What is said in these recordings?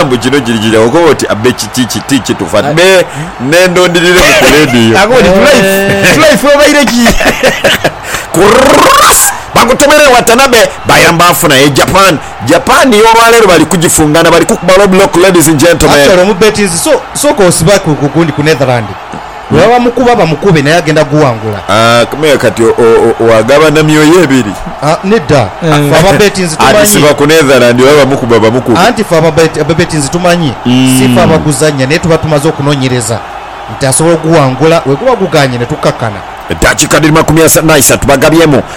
Omusaadha mbu kino kiri kiri awo koba oti abe kiki kiti kitufa ne nendo ndirire mu ku radio. Akoba oti tulife tulife obaire ki. Kurrus bagutomere Watanabe bayamba afuna e Japan Japan yo olwaleero bali kugifungana bali kukuba low block ladies and gentlemen. Actually omubetinzi so soka osibaku ku gundi ku Netherland. Bwebaba bamukuba bamukube naye agenda guwangula. Aah kati wagabana myoyo ebiri? Nedda ffe aba Betinzi tumanyi. Ati siba ku Netherland oba bamukuba bamukube. Anti ffe aba Betinzi tumanyi sife abaguzannya naye tuba tumaze okunonyereza nti asobola oguwangula weguba guganye netukakkana. Eddakiika dhiri makumi ana na isatu bagabyemu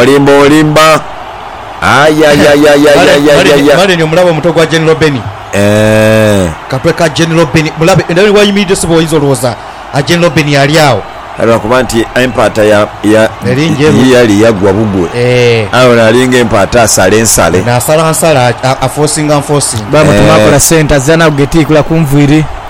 Olimba olimba ayayayayayayayaya. Male ni omulabe omuto gwa General Benny. Eeh. Katwe ka General Benny mulabe era ni wayimiridde ssebo oyinza olowooza General Benny ali agho. Aye lwa kuba nti empaata ya ya Eri njeru. ye yali yagwa bugwe Eeh. aye ono alinga empaata asala ensale. Ono asala nsala a a forcinga nforcinga. Bamutuma akola sente azira naku getiikula kunviiri.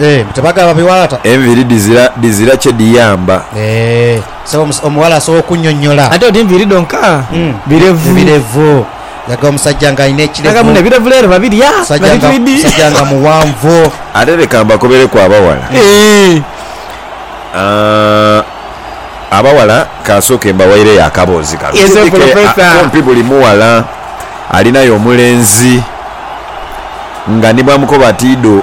Eeh mbu tebagaba babiwalata. Enviri dhizira dhizira kye dhiyamba. Eeh sebo omus omuwala asobola okunyonyola. Ate oti nviiri dhonka birevu. Ebirevu laga omusajja nga alina ekirevu. Laga muno ebirevu leero babirya nga bitwidhi. Omusajja nga mughanvu. Ate leka mbakobereku abawala. Aah abawala kansooke mbawaireyo akaboozi kano. Yes professor. Kumpi buli mughala alinayo omulenzi nga ni bwamukoba ati idho.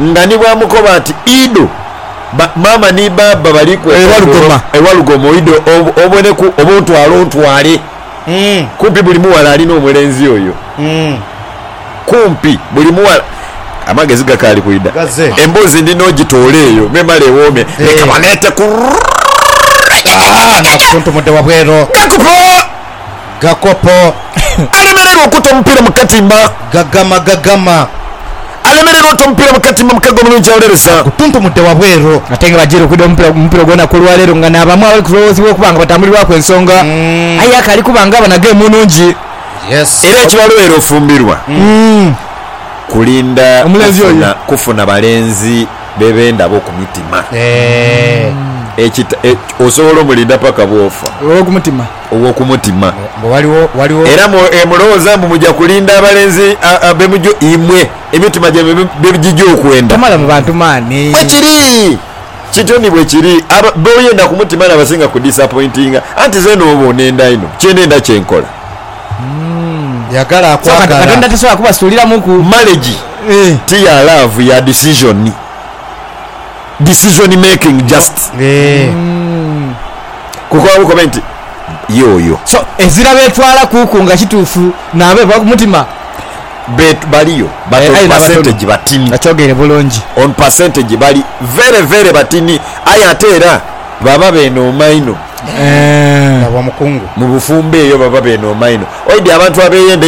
nga ni bw'amukoba ati, Ido, ba, maama ni baaba bali kwekondoola e Walugoma, ido oboneku oba ontwale ontwale. Kumpi buli mughala ali n'omulenzi oyo. Kumpi buli mughala. Amagezi gakaali kwidha. Emboozi ndi n'ogitoola eyo memale ewoome. Leka baleete ku. Aa, nga akutuntumudde wabweru. Gakuba! Gakopo. Alemererwa okuta omupiira mu katimba. Gagama, Gagama. Alemererwa ota omupiira mu katimba, omukago omulungi awolereza. Agutuntumudde wabweru. Ate nga bajiire okwidha omupiira mu mupira ogw'olunaku olwaleero nga n'abamu abali kulowoozebwa okuba nga batambulirwaku ensonga aye akaali kuba nga aba na geemu nnungi. Era ekibalwere ofumbirwa kulinda kufuna kufuna balenzi be bendaba okumutima. Osobola omulinda paka bwofa. ow'oku mutima. Mbu ghaligho, ghaligho. Era mulowooza mbu muja kulinda abalenzi be mujo imwe emitima gyaimwe bye gija okwenda? Tomalamu bantu maani. Bwe kiri. Kityo ni bwe kiri. Abo b'oyenda ku mutima n'abasinga kudisapointinga. Anti nze n'oba onenda inho, kye nenda kye nkola. Yagala akwagala. So Katonda tasobola kubasuuliramuku. Marriage ti ya laavu, ya disizoni. decision making just kukola bukobe nti ye oyo. So ezira betwala kuku nga kitufu nabo ebaku mutima. Betu baliyo but on percentage batini. Akyogeire bulungi. On percentage bali very very batini aye ate era baba benooma inho. Eeh. Baba mukungu. Mubufumbo eyo baba benooma inho. Oidhi abantu abeyenda